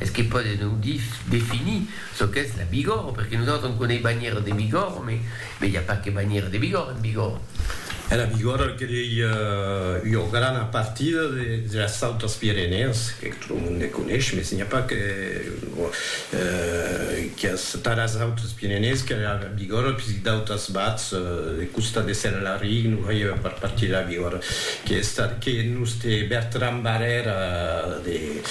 Es que pòde non definir çò qu'es la Bigòrre, perque nosautres on conei banhièra de Bigòrre, me me i a pas que banhièra de Bigòrre en Bigòrre. E la Bigòrre el que ei ua grana partida de las Autas Pirenèas, que tot lo monde coneis, mes n'i a pas que quias taras Autas Pirenèas que la Bigòrre, puisque d'autas bats de costat de Sèr Laric non faievan pas partir de la Bigòrre, que es estat que nos te Bertran Barrèra de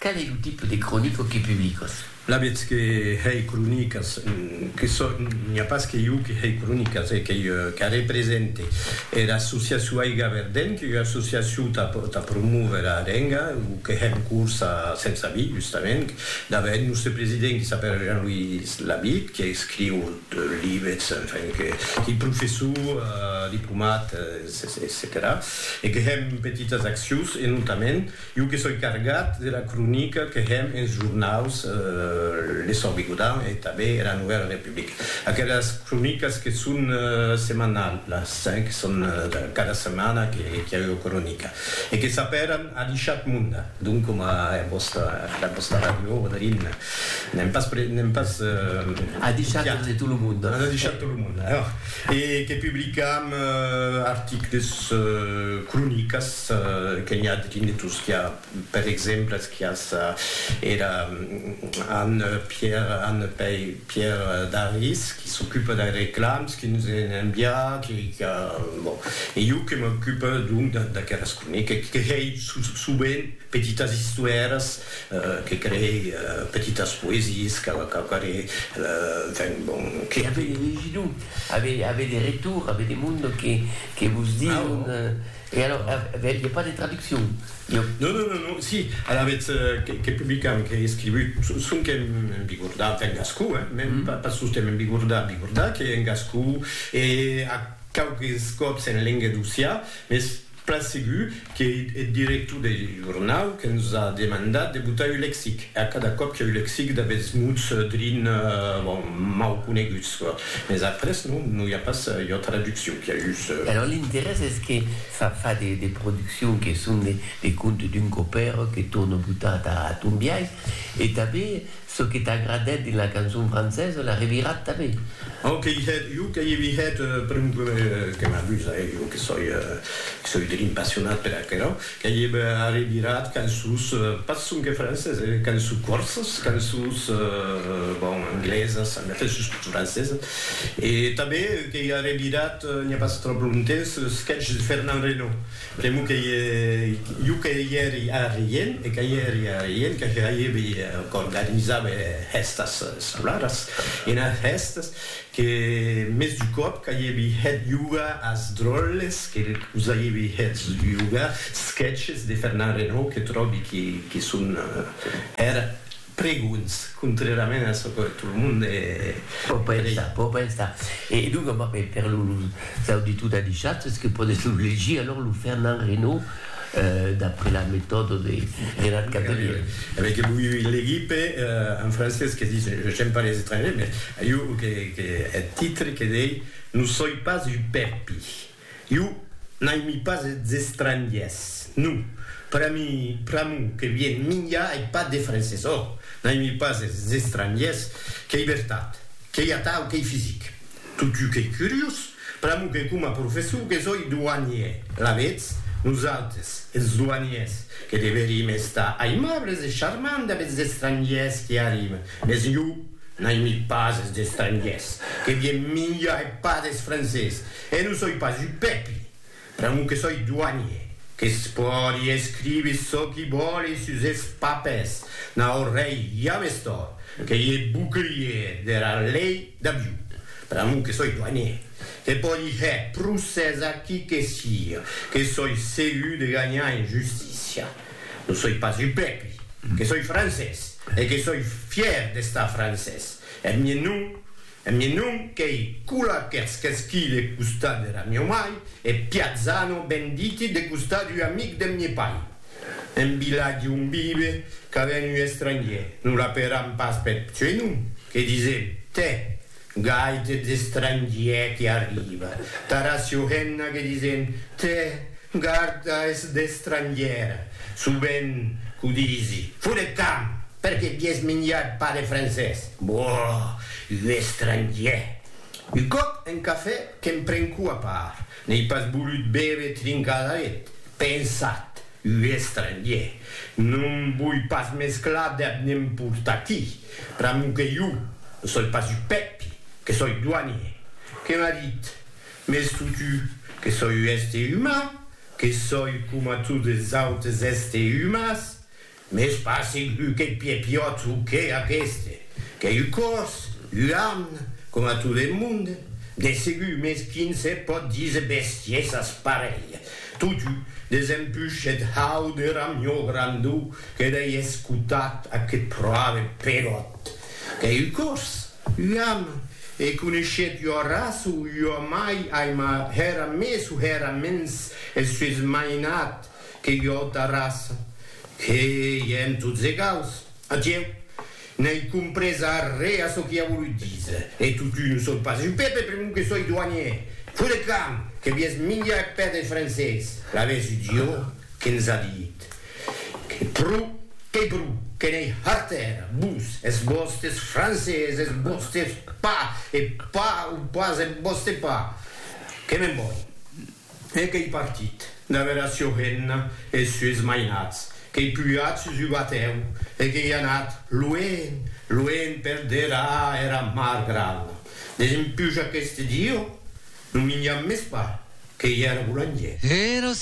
Qual es lo tipe de cronica que publicas? La vètz que hèi cronicas, que sò, n'i a pas que jo que hèi cronicas, e qu'ei qu'a represente era associacion Aiga Verdent, qu'ei ua associacion tà tà promóver a lenga, o que hèm cors a Sensabí, justament, dave eth nòste president qui s'apèra Jean-Louis Labitte, qui escriu libets, enfin, que qu'ei professor, diplomat, etcetèra, e que hèm petitas accions, e notament, Jo que soi cargat de la cronica que hèm enes jornaus Le Sòrt Bigodan e tanben era Novèla Republica. Aquelas cronicas que son semanalhas, que son cada setmana que i a ua cronica e que s'apèran A l'Ishat Munda, donc coma era vòsta ràdio Odolin, n'èm pas n'èm pas A l'Ishat de tot lo monde. A l'Ishat de tot lo monde, e que publicam articles, cronicas, que n'i a dins de Tosquià, per exemple, es quias era Anne Pierre, Anne Pei, Pierre Daris, qui s'ocupe des reclams, qui nous en envia, qui, qui, bon, e jo que m'ocupe donc d'aqueras croniques, qui creei sovent petitas istoires, que creei petitas poesies, quauquarre, enfin, bon, que. Avei de legidor, avei de retor, avei de monde que, que vos dison. E alors, vel, i a pas de traduccion? Iò. Non, non, non, non, si, alavetz, qu'è publicam, qu'è escrivut, sonque en bigordà, enfin en gascon, hein, mèn pas sosten en bigordà, bigordà, qu'è en gascon, e a quauques còps en lenga d'Ossià, mès plan segur qu'è eth director deth jornau que nos a demandat de botar un lexic, e a cada còp qu'è un lexic d'aguests mots drin, bon, mau coneguts, Mès après non, non i a pas ua traduccion, qu'i a just. Alòrs l'interès es que fa fa de de produccions que son de de contes d'un copèr que torna botar ta ton biais e tanben çò que t'agradèt dins la cançon francesa la revirat tanben. Au que i hèt, jo que i vi hèt, per un que m'abusa, eh, jo que soi, que soi drin passionat per aquerò. Qu'ei eb arribirat qu'en sus, pas sonque francés, qu'en sus corsas, qu'en sus, bon, anglesas, en efèth sus tot francesas. E tanben qu'ei arribirat, n'i a pas tròp longtemps, ce sketch de Fernand Reynaud. Pr'amor qu'ei jo que i èri arrien, e que i èri arrien, que hèibi, qu'organizava hèstas escolaras, enas hèstas, Que mès du còp qu'aievi hèt yoga as dròlles que us aievi hèts yoga, sketches de Fernand Reynaud que tròbi que son hèr pregons, contrèrament a çò que tot lo monde pò pensar, pò pensar. E donc, per los auditors d'Adishat, es que pòdes lo legir, alòr, lo Fernand Reynaud. d'après la metòda de Gerard Cabrilier. Avec l'equipe en francés que dit j'aime pas les étrangers mais iu que eth titre que dei non soi pas un pèpi, iu n'aimi pas es estrangiers, non, per mi pr'amor que vien minjar ei pas de francés, ò, n'aimi pas es estrangiers, qu'ei vertat, qu'ei atau, qu'ei fisic. Totjou qu'ei curiós, pr'amor que coma professor que soi douanier, alavetz, nosautres, es douaniers, que deverim estar aimables e charmants dab es estrangiers qui arriben, mes jo n'aimi pas es estrangiers, que vien minjar e pas des francés, e non soi pas un pèpi, Pr'amor que soi doanier, que's pòdi escrivi çò qui vòli sus es papers, n'a ò rei james tòrt, qu'ei e bouclier dera lei d'Abiu. Pr'amor que soi doanier, que pòdi hèr procès a qui que sia, que soi segur de ganhar en justícia. Non soi pas un pèpri, que soi francés, e que soi fièr d'estar francés. Eth mièn nom. E mi non qu'ei cula qu'èrs qu'esquí le costat dera mieu mai, e Piazzano ben diti de costat ua amic deth mie pai. En vilatge on vive, qu'a ven ua estrangier, non la peram pas peth pseunom, que disem, tè, gaite d'estrangier que arriva, tara Siohenna que disem, tè, garda es d'estrangiera, sovent, qu'o disi, fut eth camp, perque vies minjat pas de francés. Boh! Un estrangièr! Un còp un cafè que'm prenco a part, n'ei pas volut bève trincar d'aret. Pensat, un estrangièr! Non voi pas mesclar deb ne'm portar aquí, pr'amor que jo ne soi pas un Pèpi, que soi doanier. Que m'a dit, Mès totu, que soi un èster uman, que soi coma totes es autes èster umans, Mès pas segur qu'eth piepiots o qué aqueste, qu'ei un còrs, un arn, coma tot eth monde, de segur, mès quin se pòt díser bestiesas parelha. Totú, desempush eth hau de ramió grandó que dei escotat aqueth pròve Peròt, qu'ei un còrs, un arn, e coneishèt ua raça o ua mai aima hèra mès o hèra mens eth sues mainat, Que jo ta raça, que ièm tots egals. Atieu, n'ai comprés arré a çò qu'i a volut díser. E totun o soi pas jo, Pepe, pr'amor que soi doanièr, fo de camp, que vies minjar eth pè deth francés. L'avèsi jo que ns a dit que pro qu'ei pro, que n'ei hartèra, vos, es vòstes francés, es vòstes pa, e pa o pas eth vòste pa. Que me'n voi. E qu'ei partit, d'aver a Siorena es sues mainats, qu'ei pujat sus un batèu e qu'ei anat luenh, luenh per deraa era mar grana. Desempuja qu'este dieu, non minjam mès pas, qu'ei era bolangièr. Era